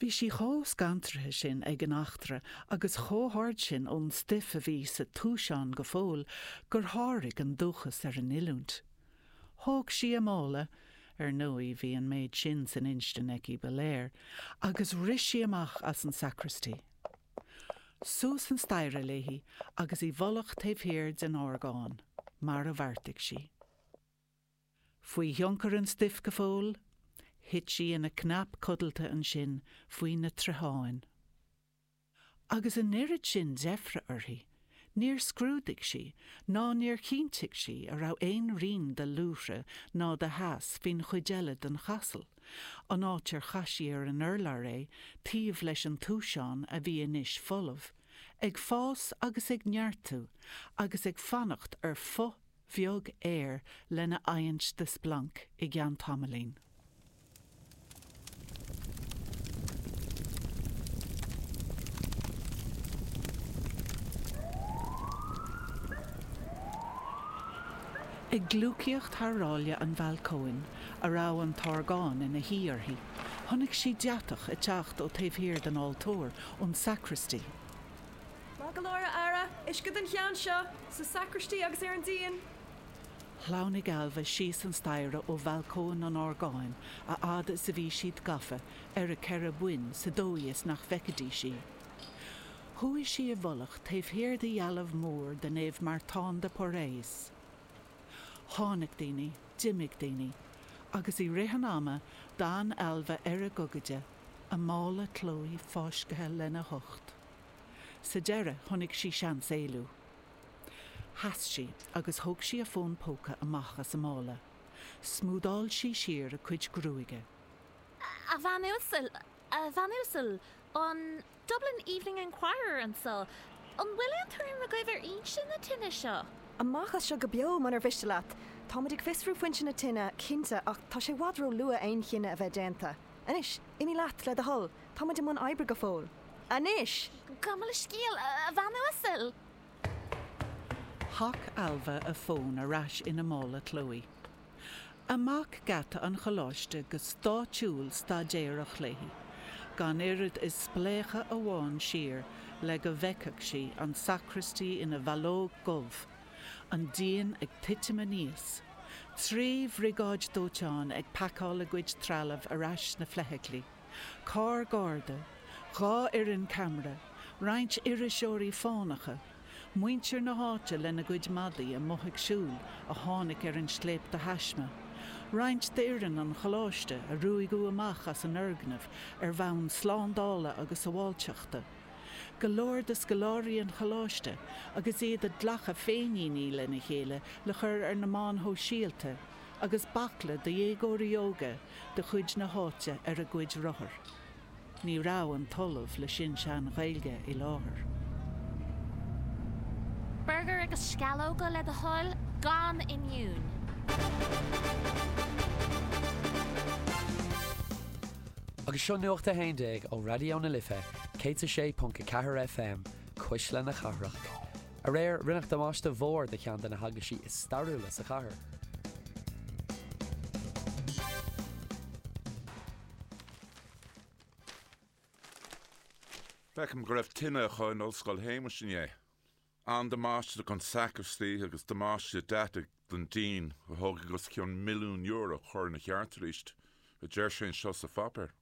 Bhí sí chomh scantraithe sin ag an eachtra agus chomh hard sin ón stuif a bhí sa túiseán go fóill gur sháraigh an dúchas ar an oiliúint. Thóg sí a mála, ar ndóigh bhí an méid sin san instinn aici ba léir, agus rith sí amach as an sacraistí. Suas an staighre léi agus i bhfolach taobh thiar den orgán, mar a bheartaigh sí. Faoi thionchar an stuif go fóill, thit sí ina cnap codlata ansin faoi na troitheáin. Agus an oiread sin deifre uirthi, níor scrúdaigh sí ná níor chinntigh sí an raibh aon rian de luaithre ná de theas faoin chuid eile den chasal, an áit ar chaith sí ar an urlár é taobh leis an túiseán a bhí anois folamh, ag fás agus ag neartú agus ag fanacht ar phuth bheag aeir lena adhaint de splanc i gceann tamaillín. Ag gliúcaíocht thar ráille an bhalcóin, a raibh an t-orgán ina shuí uirthi, chonaic sí deatach ag teacht ó taobh thiar den altóir, ón sacraistí. ma go leor earra uisce den cheann seo sa sacraistí agus ar an díon. Shleamhnaigh Ailbhe síos an staighre ó bhalcóin an orgáin a fhad is a bhí siad gafa ar a ceithre boinn sa dóigh is nach bhfeicfidís í. Chuaigh sí i bhfolach taobh thiar de dhealbh mhór de Naomh Martán de Porres. Tháinig daoine, d'imigh daoine, agus i rith an ama d'fhan Ailbhe ar a gogaide a mála Chloé fáiscthe lena hucht. Sa deireadh, chonaic sí seans éalú. Sheas sí agus thóg sí a fón póca amach as a mála. Smúdáil sí siar a cuid gruaige. A bhean uasal, a bhean uasal, an Dublin Evening Enquirer anso, An bhfuil aon tuairim agaibh ar fhoinse na tine seo? Amach as seo go beo, munar mhiste leat. Táimid ag fiosrú foinse na tine, cinnte, ach tá sé i bhfad róluath aon chinneadh a bheith déanta. Anois, imigh leat, le do thoil. Táimid i mbun oibre go fóill. Anois! Gabh mo leithscéal, a bhean uasail! Chaith Ailbhe a fón ar ais ina mála Chloé. Amach geata an Choláiste go stáidiúil staidéarach léi, gan oiread is spléachadh amháin siar le go bhfeicfeadh sí an sacraistí ina bhallóg dhubh, an díon ag titim aníos, trí bhriogáid dóiteáin ag pacáil a gcuid trealaimh ar ais sna feithiclí. carr garda, dhá fhoireann ceamara, roinnt iriseoirí fánacha, muintir na háite lena gcuid madaí amuigh ag siúl a tháinig ar an scléip de thaisme, roinnt d'fhoireann an Choláiste a ruaigeadh amach as an fhoirgneamh ar bhonn slándála agus sabháilteachta, go leor de scoláirí an Choláiste agus iad ag glachadh féiníní lena chéile le chur ar na meáin shóisialta, agus baicle de dhéagóirí óga de chuid na háite ar a gcuid rothar. Ní raibh an tOllamh le Sin-Sean-Ghaeilge i láthair. Burgair agus sceallóga, le do thoil, gan oinniúin. Agus seo Nuacht a hAon Déag ó Raidió na Life 106.4 FM, Cuisle na Cathrach. Aréir, rinneadh damáiste mhór do cheann de na heaglaisí is stairiúla sa chathair. Feicim go raibh tine acu in Ollscoil Shéamais inné. An-damáiste don sacristy agus damáiste deataigh don díon a thógfaidh os cionn milliún euro cur ina cheart arís, a deir sé anseo sa pháipéar.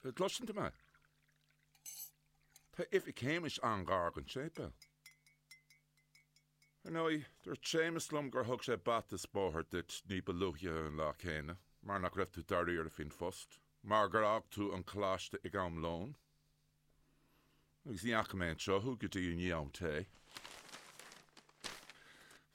An gcloiseann tú mé? Tá Oifig Shéamais an-ghar don tséipéal. Ar ndóigh, dúirt Séamas liom gur thug sé bata is bóthar duit ní ba luaithe an lá céanna mar nach raibh tú dáiríre faoin phost, mar gur fhág tú an coláiste ag am lóin, agus ní fhaca mé anseo thú go dtí i ndiaidh am tae.